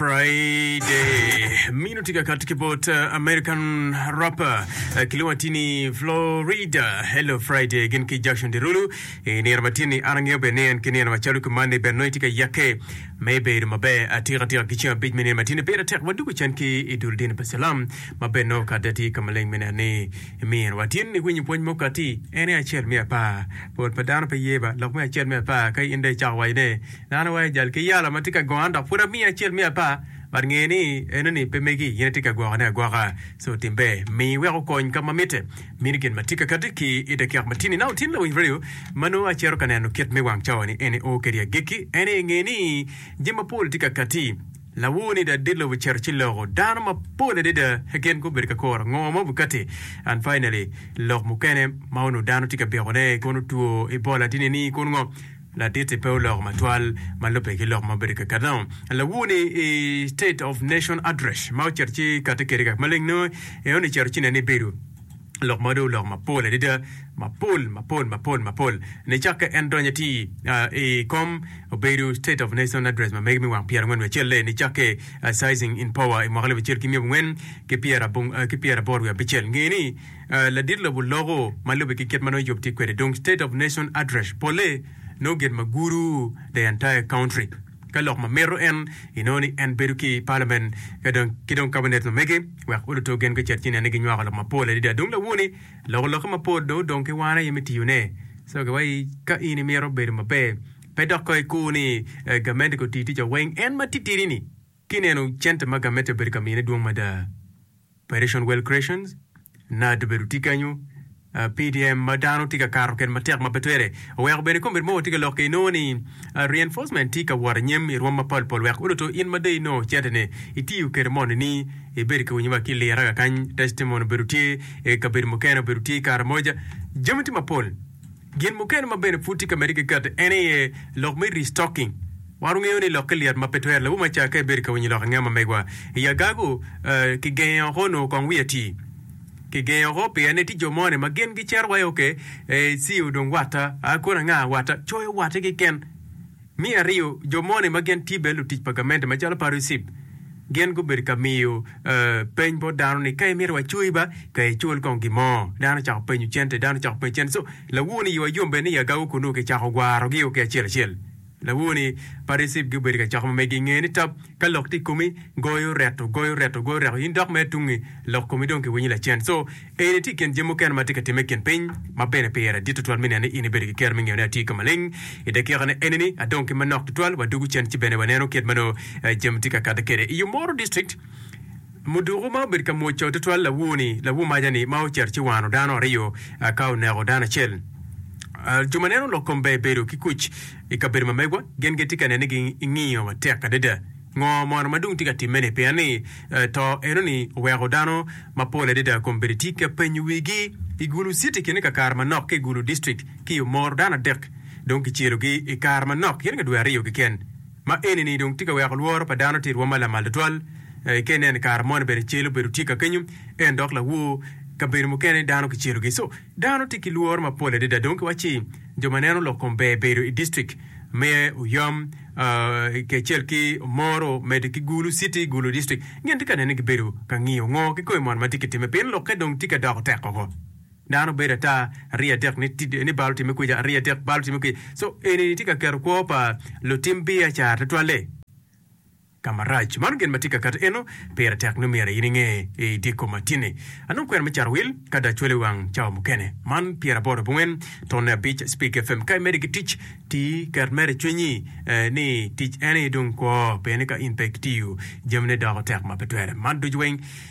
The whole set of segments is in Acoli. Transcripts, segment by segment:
Friday. Mino tye ka kati ki bot uh, American rapper uh, kilwongo atir ni Florida. Hello Friday gin ki Jackson Dirulu. I nino ma tini an angeyo bene ni en ki nino macalo ki man ni bene nongo itye ka yake me bedo maber atika atika ki ceng abic me nino ma tini pire tek wadugu can ki i dul dini pa Cilam ma bene nongo kadi ati ka maleng mene ni mino wa tini ni winyo pwony mo kati en aye acel me apar bot pa dano pe yeba lok me acel me apar ka in dong icako wacone Nano awayo jal ki yalo ma tye ka gona dok pud amiye acel me apar but nge ni enoni pe megi in itye ka gwokone agwoka so tim ber mi wek okony ka ma mitte mini gin ma tye ka kati ki i dakika ma tini. Nano tin lawiny radio ma nongo acito ka neno kit me wang cawa ni eni oo kedi agikki ene inge ni jami mapol tye ka kati lawor ni da dit lobo cito ci loko dano mapol adada gin gubedo ka koro ngo ma obi kati and finally lok mukene ma onongo dano tye ka biko ne kun otwo i bol atini ni kun ngo Laditi pe oloko matwal ma lubbe ki lok ma obedo keken no. Lawu ni i State of Nation Address ma ocito ci kati kede kak maleng no eno ni cito ci nen ni bedo lok ma do oloko mapol adida mapol mapol mapol mapol ni cakke en donyo ti i kom obedo State of Nation Address ma mege mi wang pyera ngwen wiye acelle ni cakke Sizing in Power i mwaka alip acel ki miya abongwen ki pyera abong ki pyera aboro wiye abicel ngeni Ladit lobo loko ma lube ki kit ma nongo Yub tye kwede. Dong State of Nation Address polle nongo gin ma guru the entire country. Ka lok ma mito en, inongo ni en bedo ki Parliament ka dong ki dong Cabinet ma mege wek oluto gen gucit ci nen ni ginywako lok mapol adada. Dong lawoni loko lokke mapol dong odong ki wan aye me tiyone. So ki wai ka in imito bedo maber, pe dok ka ikur ni gamente ko tii ticca weng en ma titidi-ni, ki neno cente ma gamente obedo ka mine dwong mada. Operation Well Creations, NAAD obedo tye kenyo, PDM ma dano tye ka kato kede matek ma pe twere oweko bene kombeddi mogo tye ka lokke inongo ni reinforcement tye ka wot anyim irwom mapol pol wek odoto in ma dong inongo cente ne itiyo kede moni ni ibedo ki winyo wa ki lira kakany testimony obedo tye ikabedo mukene obedo tye ikaramoja jami tye mapol Gin mukene ma bene pud tye ka medde ki kati en aye lok me restocking. Wan wungeyo ni lokke lyet ma pe twero lawu ma ca ka ibedo ka winyo lok angema megwa i agagu, ki genge oko nongo kong wi ati. Ki genge oko pien ni tye jo mo ni ma gin gicero wa i oke, ee, ci-o dong watta, aa kono anga, watta, coyo watti keken. Me aryo, jo moni ma gin tye bene lutic pa gamente macalo Parusip, gin gubedo ka miyo peny bot dano ni, Ka imito wacoyi ba, ka icul kong gin mo. Dano ocako penyo cente, dano ocako penyo cente. So, lawoni iwa yom bene i agago kunnu kicako gwarogio ki acel acel. Lawoni Parusip gubedo ka coko ma megi inge ni, Tab, ka lok tye i komi, goyo reto, goyo reto, goyo reto, in dok mere tungi, lok komi dong kiwinyo lacen. So, Eni tye i kin jami mukene ma tye ka timme i kin piny ma bene pire dit tutwal me neno ni in ibedo ki kero me ngeyo ni atye ka maleng i dakikane eni-ni, adong ki manok tutwal, wadwogo cen ci bene waneno kit ma nongo jami tye ka kati kwede. I yo moro, distrikt muduku ma obedo ka mwoco tutwal lawur-ni, lawur maja-ni ma ocito ci wano dano aryo ka oneko dano acel. Jo ma neno lok kom ber bedo ki kuc i kabedo ma megwa, gin gitye ka nene ni gingiyo matek adada. Ngo mono ma dong tye ka timme-ni? Pien ni to enoni oweko dano mapol adada kombeddi tye ka penyo wigi. I Gulu city kine ka kare manok ki i Gulu district ki Omoro dano adek dong kicelogi i kare manok gin ka dwe aryo keken. Ma enini dong tye ka weko lworo pa dano tye irwom ma lamal tutwal. Eke inen kare moni bene cel obedo tye ka kenyo en dok lawo kabedo mukene dano kicelogi. Dano tye ki lworo mapol adada dong kiwaci jo ma neno lok kom ber bedo i distrik me Uyom kacel ki Omoro medo ki Gulu city, Gulu distrik gin tye ka nene gibedo ka ngiyo ngo ki kome mono ma tye kitime pien lokke dong tye ka doko tek woko. Dano bedo ata ariya adek ni bal otime kwica ariya adek bal otime kwica so eni ni tye ka keto kwo pa lutim biacara tutwalle. Ka marac, mano gin ma tye ka kato eno, pire tek nyo myero in inge i dyekko ma tye-ni. Anongo kwena me caro wil ka da cwale wang cawa mukene. Man pyeraboro abongwen tone abic Speak FM. Ka imede ki tic, ti, ket mere i cwinyi ni tic eni dong kwo, pien ni ka in pe kitiyo, jamine doko tek ma pe twere. Man ducu weng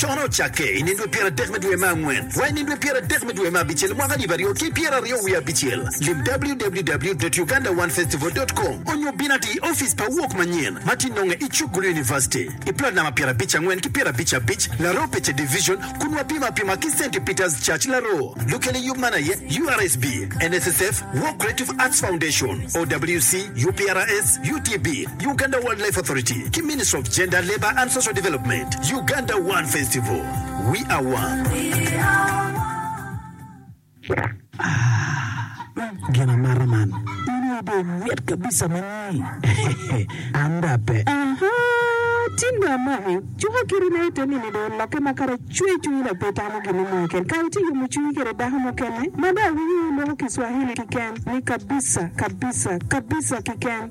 Cono ocakke i nindwe pyeradek me dwe me angwen wa i nindwe pyeradek me dwe me abicel mwaka alip aryo ki pyeraryo wiye abicel. Lim www.ugandaonefestival.com onyo bin ati i ofice pa Awok Manyen ma ti nonge i Chukgulu University i plot namba pyera abic angwen ki pyera abic abic Laroo Pece Division kun wa pimo apima ki Saint Peter's Church Laroo. Lukele yub man aye URSB, NSSF, War Creative Arts Foundation, OWC, UPRS, UTB, Uganda Wild Life Authority ki Ministry of Gender, Labour and Social Development, Uganda One Festival, We Are One. Ah, gin amata man. In aye dong mit kabisa manyi. An da pe. Aha, tin dong amaki. Cuka kiri na ite nini dong olokke ma kara cwer cwer ila pe itamo gini mo keken. Kara itye yomo cwinyi kede dako mukene ma da awinyo wuloko kiswahili kiken ni kabisa, kabisa, kabisa kiken.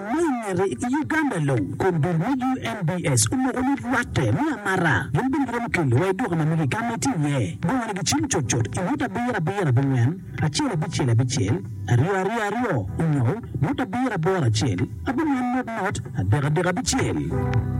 Ma i ngete, i Uganda long, kombeddi me UNBS omoko ni rwatte me amara gin bene giromo kelo wa i duka ma mege ka ma itye iye. Bongone gicimo cut cut i ngut abiro abiro abingwen, acel abicel abicel, aryo aryo aryo, onyo ngut abiro aboro acel, abingwen not not, adek adek abicel.